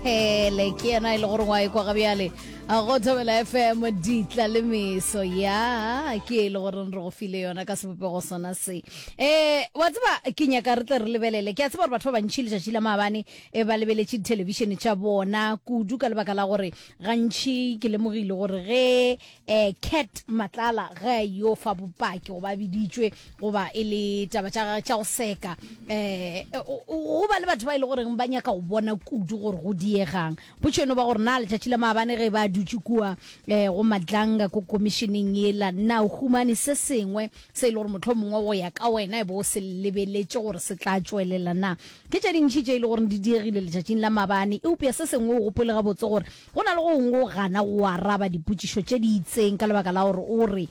Hele ke yena e le gore wa ekwa ga bjale go thobela fm ditla le meso ya ke e le gore re go file yona ka sebopego sona se um wa tseba ke nyaka re tle re lebelele ke a tseba gore batho ba bantšhi letšatši la maabane e ba lebeletše dithelebišene tša bona kudu ka lebaka la gore gantšhi ke lemogile gore ge Eh, Cat Matlala ge yo fa bopaki go ba biditšwe goba e le taba tša gagwe tša go seka eh go ba le batho ba ile e goreng ba nyaka go bona kudu gore go diegang potšeno ba gore na letšatši la maabane ge ba dutše kua eh go madlanga ko komišeneng yela na o humane se sengwe se e le gore motlho mongwe go ya ka wena e bo o se lebeletše gore se tla tšwelela na ke tše dintšhi tše e le gore di diegile letšatšing la maabane eupša se sengwe o gopole gabotse gore Go na le gongwe o gana go araba dipotšišo tše di itseng ka lebaka la gore o re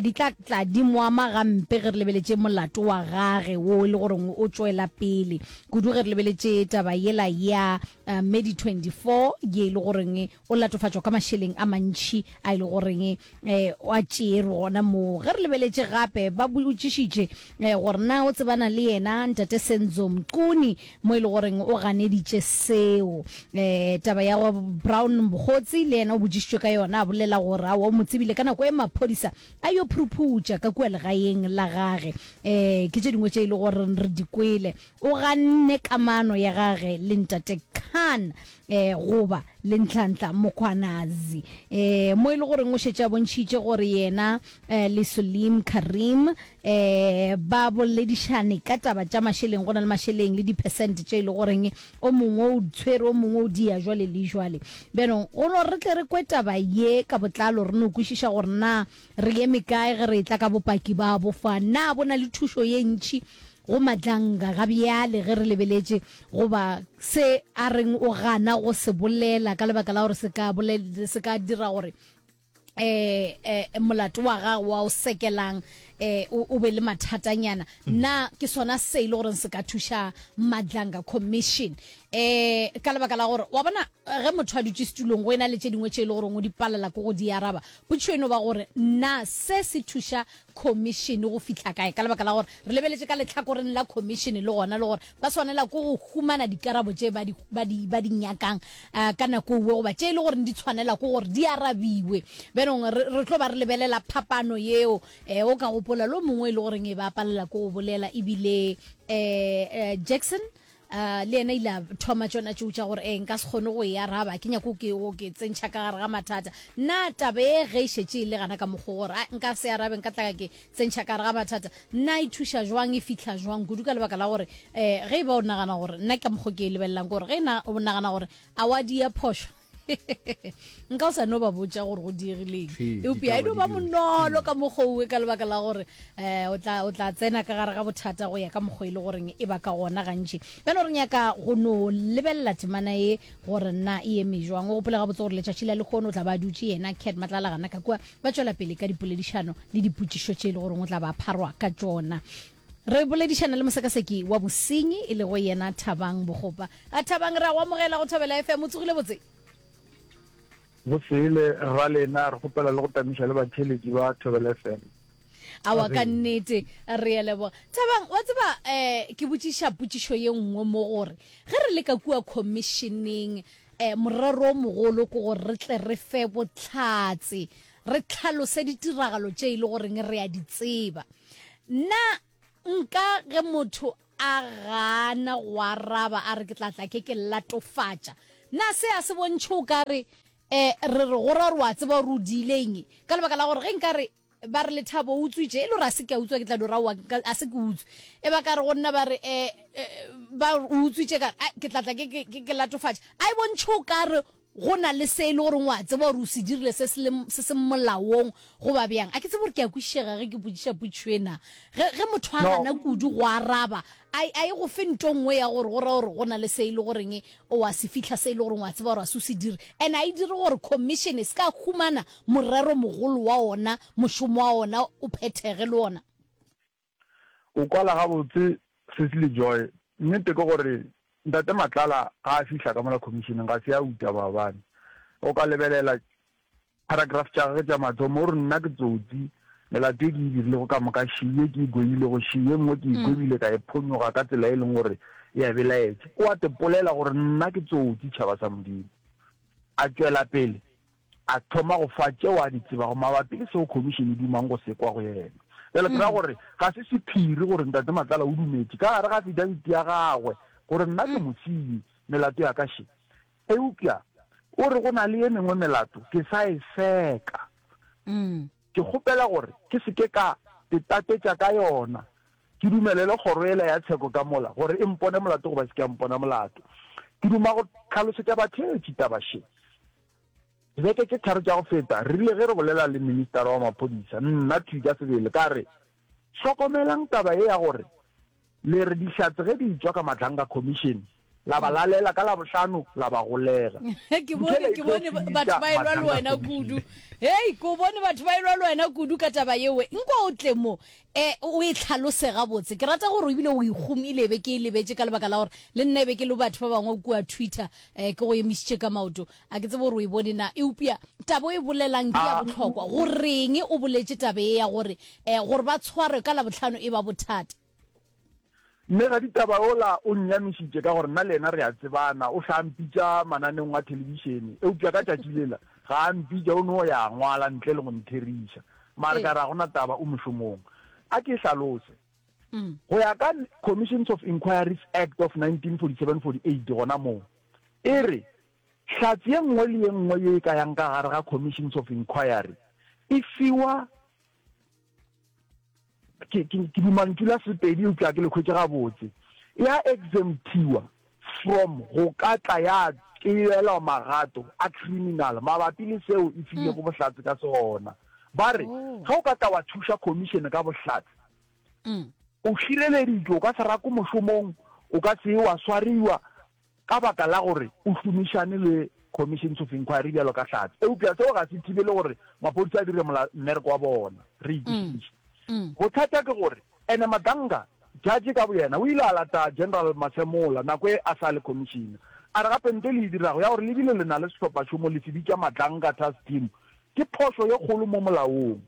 di tla tla di mo ama gampe ge re lebeletše molato wa gage wo e le gore o tšwela pele, kudu ge re lebeletše taba yela ya Medi 24 ye e le gore o latofatšwa ka mašeleng a mantši a e le gore Gwa tšeerwa gona moo. Ge re lebeletše gape, ba botšišitše gore na o tsebana le yena Ntate Senzo Mchunu, mo e le goreng o ganeditše seo. Taba ya go Brown Mokgotsi le yena o botšišitšwe ka yona, a bolela gore aowa o mo tsebile ka nako e maphodisa a yo phuruphutša ka kua legaeng la gage. Ke tše dingwe tše e le goreng re di kwele. O ganne kamano ya gage le Ntate Khan eh, goba le Nhlanhla Mkhwanazi eh, mo e le goreng o šetše a bontšhitše gore yena eh, le Suleem Karim eh, ba boledišane ka taba tša mašeleng, go na le mašeleng le dipersent tše e le goreng o mongwe o tshwere o mongwe o dia jwale le jwale. Bjanong go no re tle re kwe taba ye ka botlalo, re no kwešiša gore na re eme kae ge re etla ka bopaki ba bofa, na bo na le thušo ye ntšhi Go matlanga ga bjale ge re lebeletše goba se a reng o gana go se bolela ka lebaka la gore se ka bolel, se ka dira gore eh, eh, molato wa gagwe wa o sekelang eh, o, o be le mathatanyana mm. na ke sona se e le gore se ka thuša madlanga commission eh, ka lebaka la gore wa bona ge motho a dutse setulong go e na le tše dingwe tše e le gore o di palela ko go di araba potšo eno ba gore na se se thuša Khomišene go fihla kae, ka lebaka la gore re lebeletše ka lehlakoreng la Khomišene le gona le gore ba swanela ke go humana dikarabo tše ba di, ba di, ba di nyakang uh, ka nako ewe goba tše e le gore di tshwanela ke gore di arabiwe. Bjanong re, re tlo ba re lebelela phapano yeo. Eh, o ka gopola lo mongwe e le goreng e ba palela ke go bolela ebile eh, eh, Jackson A le yena ile a thoma tšona tšou tša gore, Ee, nka se kgone go e araba, ke nyaka go ke, go ke tsentšha ka gare ga mathata. Na taba ye ge e šetše e le gana ka mokgwa gore a, nka se arabe, nka tla ka ke tsentšha ka gare ga mathata, na e thuša jwang, e fihla jwang kudu? Ka lebaka la gore um ge e ba o nagana gore, nna ka mokgwa ke e lebelelang ke gore ge e na, o nagana gore a wa di ya phošo, nka o sa no ba botša gore go diegileng eupša e no ba monolo ka mokgouwe ka lebaka la gore um o tla tsena ka gare ga bothata go ya ka mokgwa e le goreng e ba ka gona gantši bjano re nyaka go no lebelela temana ye gore na e eme jwang o gopole gabotse gore letšatši la lekgono o tla ba dutše yena cat matlalagana ka kua ba tšwela pele ka dipoledišano le dipotšišo tše e le goreng o tla ba pharwa ka tšona Re boledišana le mosekaseki wa bosenyi e lego yena Thabang Bogopa. A Thabang, re a go amogela go Thobela FM. O tsogile botse? Go sele, rra lena. Re kgopela le go tamiša le batheeletši ba Thobela FM. Awa ka nnete, re a leboga. Thabang, wa tseba um ke botšiša potšišo ye nngwe mo gore ge re le ka kua khomišeneng um morero o mogolo ke gore re tle re fe bohlatse Re tlhalose ditiragalo tše e le goreng re a di tseba. Na nka ge motho a gana go araba a re ke tla tla ke ke latofatša, na se a se bontšhe o ka re eh, re re go ra gore o a tseba gore o diile eng? Ka lebaka la gore ge nka re ba re Lethabo o utswitše, e le gore a se ke a utswa ke tla dira oa a se ke utswe. E ba ka re go nna ba re eh, eh, ba o utswitše ka re ke tla tla ke ke latofatša, a e bontšhe o ka re Go na le se e le goreng o a tseba gore o se dirile se se seng molaong goba bjang? A ke tsebe gore ke a kwešišega ge ke botšiša potšo ena. Ge, ge motho a gana kudu go araba, a, a e go fe nto e nngwe ya gore go ra gore go na le se e le goreng o a se fihla se e le goreng o a tseba gore ga se o se dire. And a e dire gore Khomišene e se ka ya humana morero mogolo wa ona, mošomo wa ona o phethege le ona. O kwala gabotse, Cecily Joy. Nnete ke gore Ntate Matlala ga a fihla ka mola khomišeneng ga se a uta maabane. O ka lebelela paragraph tša gagwe tša mathomo, o re, Nna ke tsotsi, melato e ke e dirilego ka moka še ye ke e gwebilego še ye nngwe ke e gwebile ka e phonyoga ka tsela e leng gore e a belaetša. O a tepolela gore nna ke tsotsi, tšhaba sa Modimo. A tšwela pele. a thoma go fa tšeo a di tsebago mabapi le seo khomišene e dumang go se kwa go yena. Bjale ke ra mm. gore ga se sephiri gore Ntate Matlala o dumetše ka gare ga afidabiti ya gagwe gore nna ke mm. mosenyi melato ya ka še. Eupša o re go na le ye mengwe melato ke sa e seka. Mm. Ke kgopela gore ke seke ka tetatetša ka yona ke dumelele kgoro ela ya tsheko ka mola gore e mpone molato goba se ke ya mpona molato ke duma go tlhalosetša batheetši taba še Dibeke tše tharo tša go feta, re rile ge re bolela le ministara wa maphodisa, nna thwi ka sebele, ka re, Hlokomelang taba ye ya gore le re Dihlatse ge di etšwa ka Matlhanka Commission, la ba lalela, ka Labohlano la ba golega. Ke bone, ke bone batho ba elwa le wena kudu. Hei, ke o bone batho ba elwa le wena kudu ka taba yewe. Nko o tle mo. E, o e tlhalose gabotse. Ke rata gore o bile o e gomile, e be ke e lebetše, ka lebaka la gore le nna e be ke le batho ba bangwe kua Twitter, e, ke go emišitše ka maoto. A ke tsebe gore o e bone na. Eupša taba o e bolelang ke ya bohlokwa. Goreng o boletše taba ye ya gore, e, gore ba tshwarwe ka Labohlano e ba bothata? Mme raditaba yola o nnyamišitše ka gore nna le yena re a tsebana. O hlaa mpitša mananeong a thelebišene, eupša ka tšatši lela ga a mpitša, o no ya a ngwala ntle le go ntheriša. Mare ka re ga go na taba, o mošomong. A ke hlalose. Go ya ka Commissions of Inquiries Act of 1947-48 gona moo, e re hlatse ye nngwe le ye nngwe ye e ka yang ka gare ga Commissions of Inquiry e fiwa ke dimantšu la sepedi eupša ke le khwetše gabotse ya exemptiwa from go ka tla ya tšeelwa magato a criminal mabapi le seo e filego hmm. bohlatse ka sona ba re oh. ge o ka tla wa thuša commission ka bohlatse hmm. o šireleditšwe o ka se rako mošomong o ka se wa swariwa ka baka la gore o šomišane le Commissions of Inquiry bjalo ka Hlatse. Eupša seo ga se thibele gore maphodisa a dire mola mmereko wa bona, re e kwešiša. Bothata ke gore ene Maganga, judge ka boyena, o ile a lata General Masemola nako e a sa le Commissioner, a re gape nto e le e dirago ya gore le bile le na le sehlophašomo le se bitša Maganga Task Team ke phošo ye kgolo mo molaong.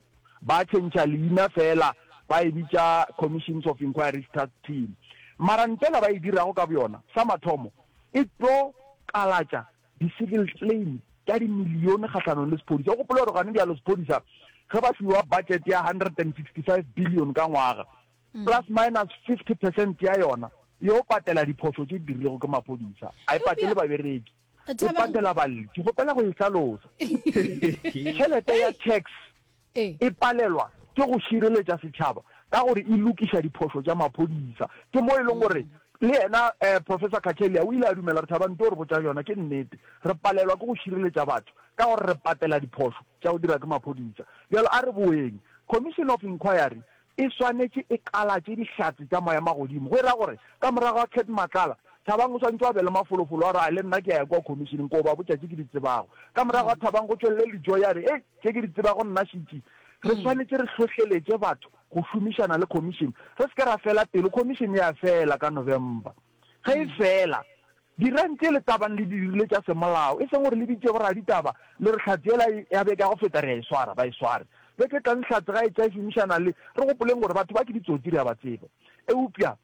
ba tšhentšha leina feela ba e bitša Commissions of Inquiries Task Team. Mara ntela ba e dirago ka boyona, sa mathomo e tlo kalatša di-civil claim tša dimilione kgahlanong le sephodisa. O gopole gore gane bjalo sephodisa ge ba fiwa budget ya 165 billion ka ngwaga, plus minus 50 percent ya yona, e yo patela diphošo tše di dirilego ke maphodisa, a e patele babereki. o Thabang- patela balli ke kgopela go e hlalosa tšhelete ya tax Ee. e palelwa ke go šireletša setšhaba ka gore e lokiša diphošo tša maphodisa ke mo e leng gore le yena um professor kachelia o ile a dumela re thabang nto re botša yona ke nnete re palelwa ke go šireletša batho ka gore re patela diphošo tša go dira ke maphodisa bjalo a re boeng commission of inquiry E swanetše e kalatše dihlatse tša moya magodimo. Go e ra gore, ka morago ga Cat Matlala, Thabang o swantšwe a be le mafolofolo a gore, Ai, le nna ke a ya kua khomišeneng koo ba botša tše ke di tsebago. Ka morago ga Thabang go tšwelele Lijoy a re, Ei, tše ke di tsebago nna šiti. Re swanetše re hlohleletše batho go šomišana le khomišene. Re se ke ra fela pelo, khomišene e a fela ka November. Ge e fela, dirang tše le ka bang le di dirile tša semolao, e seng gore le bitše boraditaba le re hlatse yela ya beke ya go feta re a e swara, ba e sware. Beke e tlang hlatse ga e tla e šomišana le, re gopoleng gore batho ba ke ditsotsi, re a ba tseba. Eupša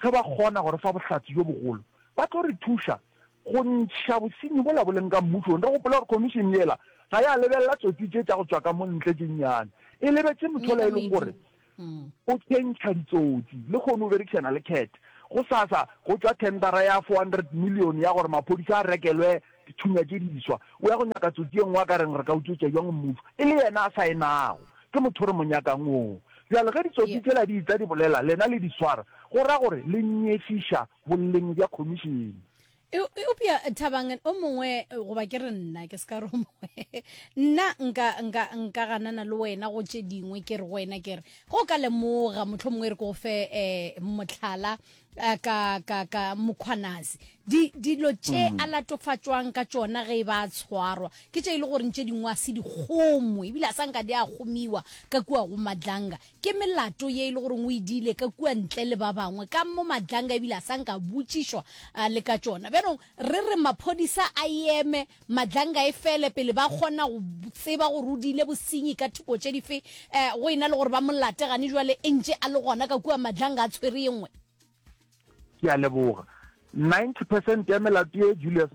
ge ba kgona go re fa bohlatse bjo bogolo, ba tlo re thuša go ntšha bosenyi bola bo leng ka mmušong. Re gopole gore khomišene yela ga ya lebelela tsotsi tše tša go tšwa ka mo ntle tše nnyane, e lebetše motho yola e leng gore O tshentšha ditsotsi le kgono o berekišana le cat. Go sasa go tšwa thendara ya 400 million ya gore maphodisa a rekelwe dithunya tše diswa. O ya go nyaka tsotsi e nngwe a ka reng re ka utswetša bjang mmušo e le yena a saenago. Ke motho re mo nyakang oo. Bjale ge ditsotsi tšela di etla di bolela lena le di swara go ra gore le nyefiša boleng bja khomišene. Eupša Thabang, o mongwe, goba ke re nna, ke se ka re o mongwe, nna nka, nka, nka ganana le wena go tše dingwe, ke re go wena, ke re, ge o ka lemoga, mohlho mongwe re ko fe um mohlala eh, ka, ka, ka Mkhwanazi, di, dilo tše mm. a latofatšwang ka tšona ge e ba a tshwarwa, ke tše e le goreng tše dingwe a se di kgomwe, ebile a sa nka di a kgomiwa ka kua go Madlanga, Ke melato ye e le goreng o e diile ka kua ntle le ba bangwe ka mo Madlanga ebile a sa nka a botšišwa a le ka tšona. Bjanong re re maphodisa a eme, Madlanga e fele pele ba kgona go tseba gore o diile bosenyi ka thoko tše dife, um go e na le gore ba mo late gane jwale e ntše a le gona ka kua Madlanga a tshwere e nngwe. Ke a leboga. 90 percent ya melato ye Julius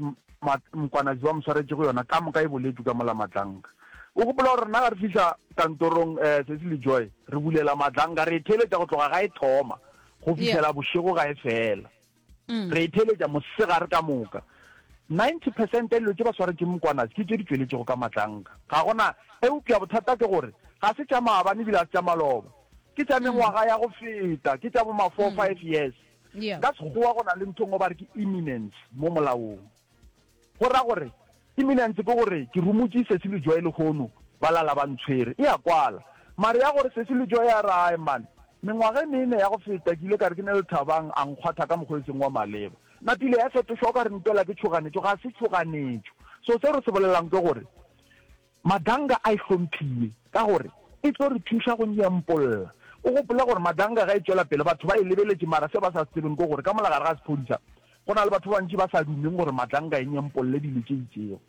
Mkwanazi ba mo swaretšego yona ka moka e boletšwe ka mola Madlanka. O gopola gore rena ga re fihla kantorong eh, Cecily Joy, re bulela Madlanka, re e theeletša go tloga ga e thoma go fihlela bošego ga e fela. Mm. Re e theeletša mosegare ka moka. 90 percent ya dilo tše ba swaretšeng Mkwanazi ke tše di tšweletšego ka Madlanka. Ga gona eupša bothata ke gore ga se tša maabane ebile ga se tša maloba. ke tša mengwaga ya go feta ke tša boma four mm. five years ka sekgowa go na le nthong o ba re ke imminence mo molaong go ra gore imminence ke gore ke romotse sesi le joe lekgono ba lala ba ntshwere e ya kwala mare ya gore sesi le joe ya rae mane mengwaga e mene ya go feta ke ile ka re ke ne le thabang a nkgwatha ka mokgwa e seng wa maleba napile ya fetošwa o ka re ntela ke tšhoganetšo ga se tšhoganetšo so se re se bolelang ke gore Madanga a e hlomphiye ka gore e tlo re thuša go nyempolla. O gopole gore Madanga ge e tšwela pele batho ba e lebeletše mara seo ba sa se tsebeng ke gore ka mola gare ga sephodisa go na le batho ba bantši ba sa dumeng gore Madanga e nyempolle dilo tše itšego.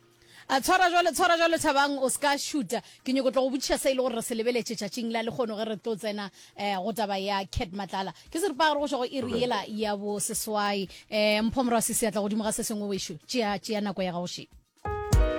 A tshwara jwale, tshwara jwale Thabang, o se ka šuta. Ke nyoko tlo go botšiša se e le gore re se lebeletše tšatšing la lekgono ge re tlo tsena eh, go taba ya Cat Matlala. Ke seripagare go tšwa go iri yela ya bo seswai. Eh, Mpho Morwa Sisi a tla godimo ga se sengwe wešo. Tšea, tšea nako ya gago še.